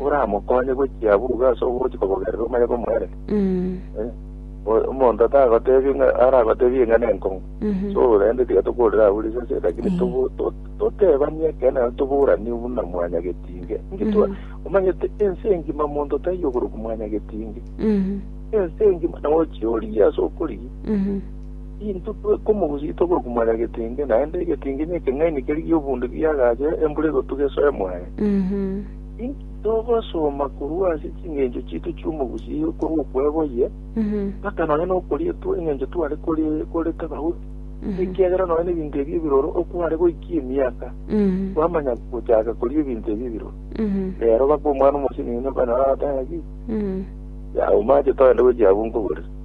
oramokonye gochia buuga ase obogochi kobogerera omanye komoere Eh, o- omonto atagotebie ng'a aragotebie ng'a nenkong'u so rende tiga tokorera abwo risese lakini tobo- to- totebanie ekene naende toboranie buna mwanyagetinge ngitwa omanyete ense engima monto taiyo okorokwa mwanyagetinge ense engima nawe ochia origie ase okorigia Intwe twekomogusia tokokumanya egetingi, naende egetingi nekeng'aini keria gi'obundi giagacha embura egotuga esoe mwaye. Inki togosoma korwa ase chingencho chiaito chi'omogusii okorwa okwegwa oye, mpaka nonya nokorietwa engencho tware koreta abahuti? Ekiagera nonya nebinto ebi ebiroro okware goikia emiaka, kwamanya gochaka koria ebinto ebi ebiroro. Rero baka omwana omosinyi, nonya okonyora agotebi, Yago, mache togende gochia abwo nkoborere.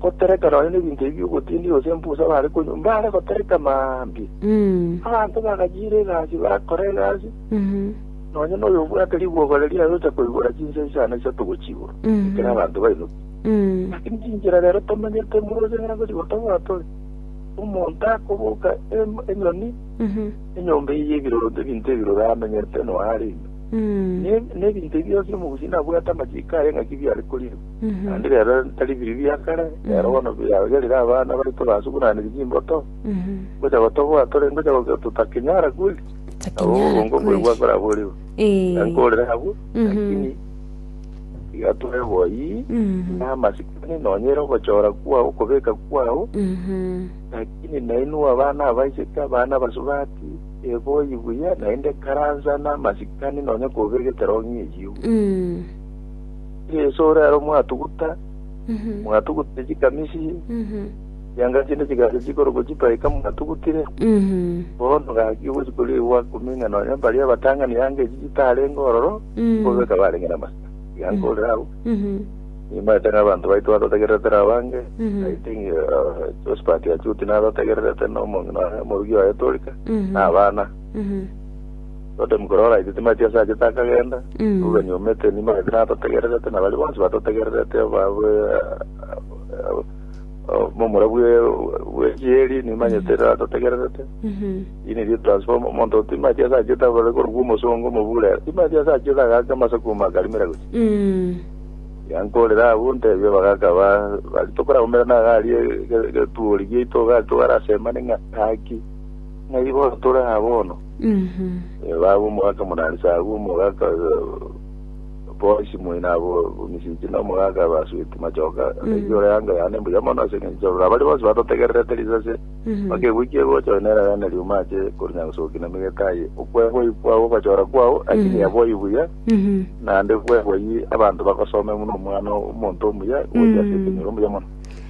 Gotereka nonya nebinto ebi ogotindi gose embusa bare konywa, mbare gotereka mambia. Mm. Abanto bagachiira egasi bakora egasi, Mhm. nonya noyo obwate ribwogo riria ayocha koigora chinsa isano isato gochia igoro, Mhm. ekero abanto bainuki. Mm. Lakini chinchera rero tomanyete moroche ng'a gori gotoboa tore. Omonto akoboka em- enyoni, Mhm. enyomba eye y'ebiroro ebinto ebiroro amenyete noyo arenge. Mm. Ne- Nebinto bionsi omogusi nabwate amachiko aye ng'aki biare korirwa. naende rero tari biri bia kare rero bono biagerire abana baito basugunanire chimboto ngocha gotoboa tore ngocha goke- totakenyara kweli Takenyara obongo kweli. bwegwa koraborigwe Eh. ankorera abwo Mhm. lakini igatore boyi Mhm. namasikani nonyere ogochora kwao okobeka kwao Mhm. lakini nainu abana abaiseke abana abasubati eboyi buya naende karansa namasikani nonye kobegetera ong'ie eyiu Mm. Yeso ore aro mwatuguta, mwatugutire chikamisi chianga chinde chigacha chikorokwa chipaika mwatugutire, bono gaki ogochi koria igwa komenya nonya baria abatang'ani anga echi chitarenge ororo, bobe kabarenge namasira. Iga nkorire agwo, nimanyete ng'a abanto baito batotegererete nabo bange, I think uh, Josephat Achuti natotegererete na omonge nonya omorugi oye Torika, na abana. Totem korwa oraite timati ase achete akagenda rubeni omete enimo agete natotegererete na baria bonsi batotegererete momura bwe chieri nimanyete natotegererete ini ri transform omonto timati ase achete abare korokwa omosongo omobure timati ase achete agake amase kuma akarimera gocha yankorera abu ntebi abagaka ba bari tokoragumera nagari egetuori giaito gari togarasemane ng'a haki ng'ai bono tore aa bono Baba omogaka Monanisa agwo, omogaka Boasi moina abo Misiti, na omogaka Basuiti machoka, ngaki ore anga yane mbuya mono ase engencho ororo abari bonsi batotegererete risase, bakegwikia egocha oyo nere yane riuma ache korinya gosoki na migete aye. Okweboyi kwao ogwachora kwao akiri yeboyi buya, naende kweboyi abanto bagosome buna omwana omonto omuya gocha ase ekenyoro mbuya mono.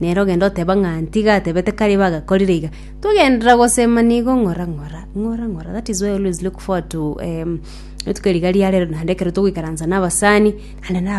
Nere ogende oteba ng'a ntiga atebete kare iba agakorire iga. Togenderera gosema nigo ng'ora ng'ora, ng'ora ng'ora. That is why I always look forward to um, rituko riga riarero naende ekero togoikaransa na abasani, naende naba